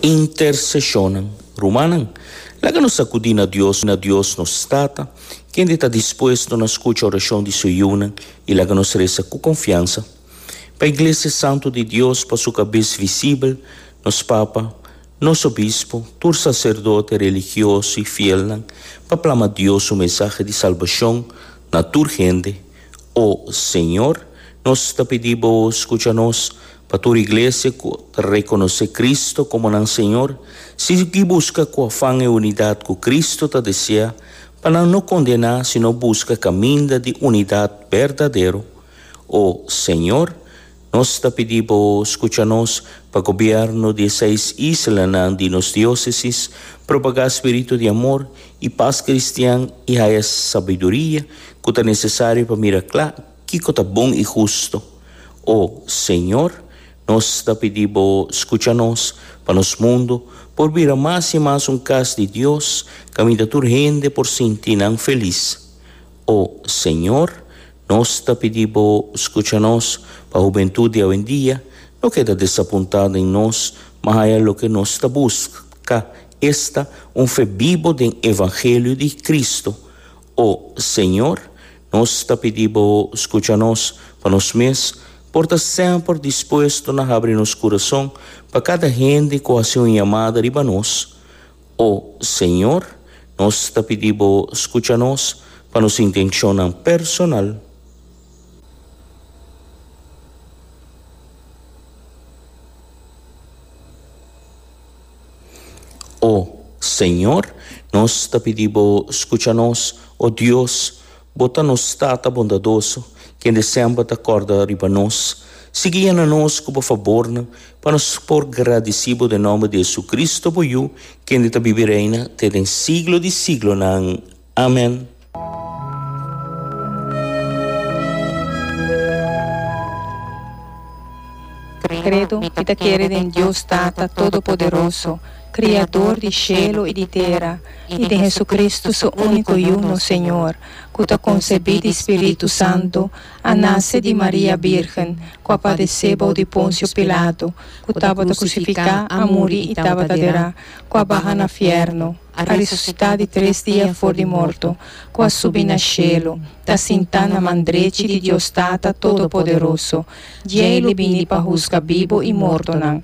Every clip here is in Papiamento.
Interseshonnan. Rumannan, laga nos ta kudí na Dios, na Dios nos Tata, kende ta dispuesto na skucha orashon di Su yunan, i laga nos resa ku konfiansa pa iglesia santu di Dios, pa Su Kabes visibel, nos Papa, nos Obispo, tur saserdote, religioso i fielnan, pa plama Dios Su mensahe di salbashon na tur hende. O Señor, nos ta pidi Bo scucha nos, pa tur Iglesia cu ta reconoce Cristo como nan Señor, sigui busca cu afan e unidad cu Cristo ta desea, pa nan no condena, sino busca caminda di unidad berdadero. O Señor, Nos ta pidi bo scucha nos pa gobierno di e seis islanan di nos diocesis propaga spiritu di amor y pas cristian y haya sabiduria cu ta necesario pa mira cla kico ta bon y husto. O Señor, nos ta pidi bo scucha nos pa nos mundo por bira mas y mas un cas di Dios caminda tur hende por sinti nan feliz. O Señor, Nos ta pidi bo scucha nos pa hubentud di awendia no keda desapunta den nos ma haya loke nos ta busca, esta, un fe bibo den evangelio di Cristo. O Señor, nos ta pidi bo scucha nos pa nos mes por ta semper dispuesto na habri nos curazon pa cada hende cu haci un yamada riba nos. O Señor, nos ta pidi Bo scucha nos pa nos intencionnan personal. O Señor, nos ta pidi Bo scucha nos, o Dios, Bo ta nos Tata bondadoso, kende semper ta kòrda riba nos. Sigui yena nos ku bo fabornan, pa nos por gradisí bo den nòmber di JesuCristo, bo Yu, kende ta biba i reina te den siglo di siglonan. Amèn. Credo, Mi ta kere den Dios Tata Todopoderoso, Kriador di shelu i di tera, i den Hesukristu su úniko Yu, nos Señor, ku ta konsebí di spiritu santu, a nase di Maria bírgen, ku a padesé bou di Ponsio Pilatu, ku tabata krusifiká, a muri i tabata derá, ku a baha na fièrnu, a resusitá di tres dia for di morto, ku a subi na shelu, ta sintá na man drechi di Dios Tata Todopoderoso. Djei lo bini pa husga bibu i mortonan.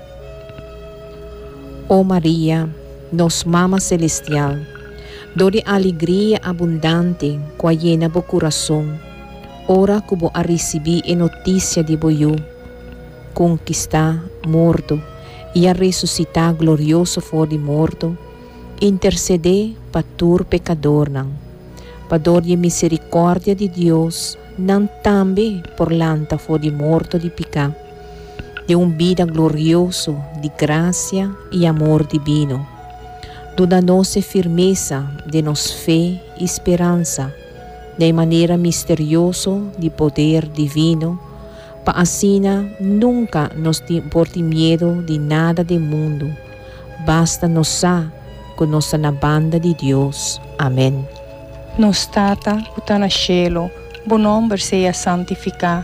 O Maria, nos Mama Selestial, dor di aligria abundante ku a yena bo kurason ora ku bo a risibí e notisia di bo Yu, ku kistá morto i a resusitá glorioso for di morto, intersedé pa tur pekadornan. Pa dor di e miserikòrdia di Dios, nan tambe por lanta for di morto di piká. den un bida glorioso di grasia i amor dibino, duna nos e firmesa den nos fe i speransa na e manera misterioso di poder divino, pa asina nunka nos por tin miedu di nada den mundu, basta nos sa ku nos ta na banda di Dios. Amen. Nos Tata ku ta na shelu, Bo nòmber sea santifiká.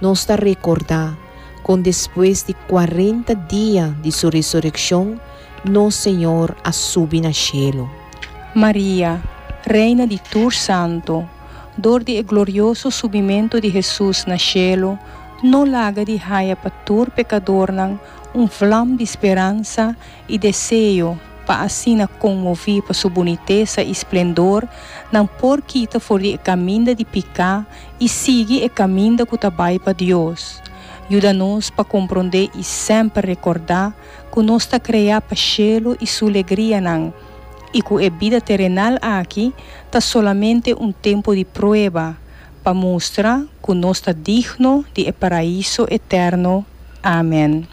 Nos ta rekordá kon despues di kuarenta dia di su resurekshon, nos Señor a subi na shelu. Maria, Reina di tur santu, dor di e glorioso subimentu di Hesus na shelu, no laga di haya pa tur pekadornan un vlam di speransa i deseo pa asina konmoví pa su bunitesa i splendor nan por kita for di e kaminda di piká i sigui e kaminda ku ta bai pa Dios. Yuda nos pa komprondé i semper rekordá ku nos ta kreá pa shelu i su legrianan i ku e bida terenal aki ta solamente un tempu di prueba pa mustra ku nos ta digno di e Paraíso eterno. Amen.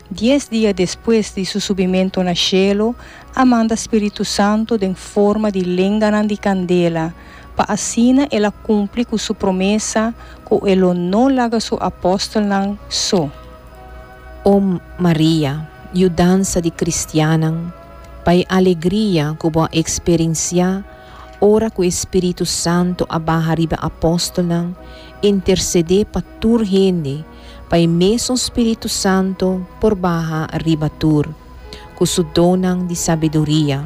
Dies dia despues di su subimentu na shelu, a manda spiritu santu den forma di lenganan di kandela, pa asina el a kumpli ku su promesa ku e lo no laga su apòstelnan so. O Maria, yudansa di kristiannan, pa e alegria ku bo a eksperensiá ora ku e spiritu santu a baha riba e apòstelnan, intersedé pa tur hende, pa e mesun Spiritu Santu por baha riba tur, cu su donnan di sabiduria,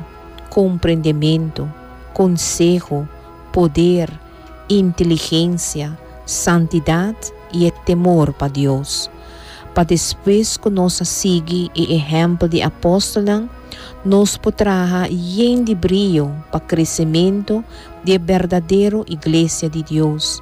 comprendementu, conseho, poder, inteligencia, santidad y e temor pa Dios. Pa despues cu nos a sigui e ehempel di apostolnan, nos por traha yen di brio pa crecemento di e berdadero Iglesia di Dios,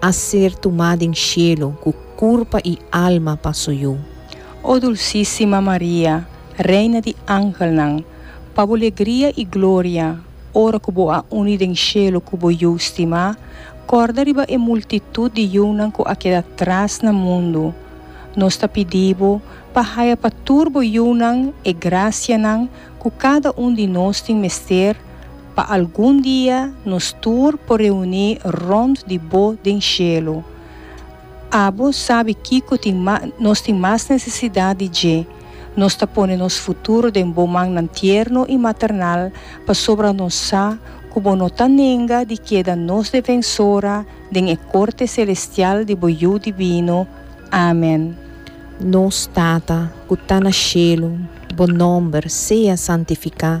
a ser tumá den shelu ku kurpa i alma pa Su Yu. O dulsísima Maria, Reina di angelnan, pa Bo legria i gloria, ora ku Bo a uni den shelu ku Bo Yu stimá, kòrda riba e multitut di yunan ku a keda tras na mundu. Nos ta pidi Bo pa haya pa tur Bo yunan e grasianan ku kada un di nos tin mester, pa algun dia nos tur por reuní rònt di Bo den shelu. Abo sabi kiko tin nos tin mas nesesidat di dje, nos ta pone nos futuro den Bo mannan tierno i maternal pasobra nos sa ku Bo no ta nenga di keda nos Defensora den e korte selestial di Bo Yu Divino. Amen. Nos Tata ku ta na shelu, Bo nòmber sea santifiká.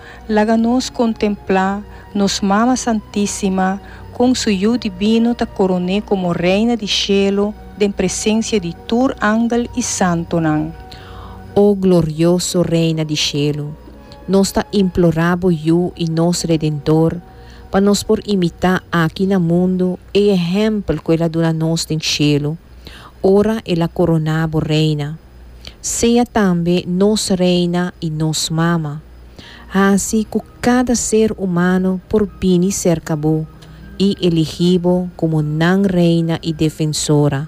Laga nos kontemplá nos Mama Santísima kon su Yu Dibino ta koroné komo Reina di Shelu den presensia di tur angel i santunan. O glorioso Reina di Shelu, nos ta implorá Bo Yu i nos Redentor pa nos por imitá aki na mundu e ehèmpel ku El a duna nos den Shelu, ora El a koroná Bo Reina. Sea tambe nos reina i nos mama. Hasi ku kada ser humano por bini serka bo i eligí bo komo nan reina i defensora,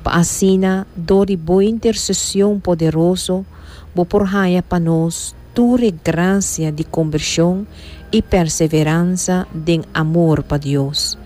pa asina dor di bo intersesion poderoso bo por haña pa nos tur e grasia di kombershon i perseveransa den amor pa Dios.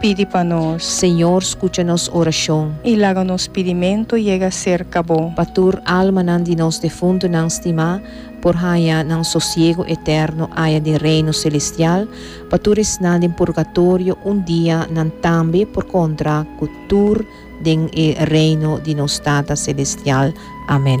Pidi pa nos. Señor, scucha nos oracion. I laga nos pidimento yega cerca Bo. Pa tur almanan di nos defuntonan stimá por haña nan sosiego eterno aya den Reino celestial, pa tur esnan den purgatorio un dia nan tambe por contra cu tur den e Reino di nos Tata celestial. Amen.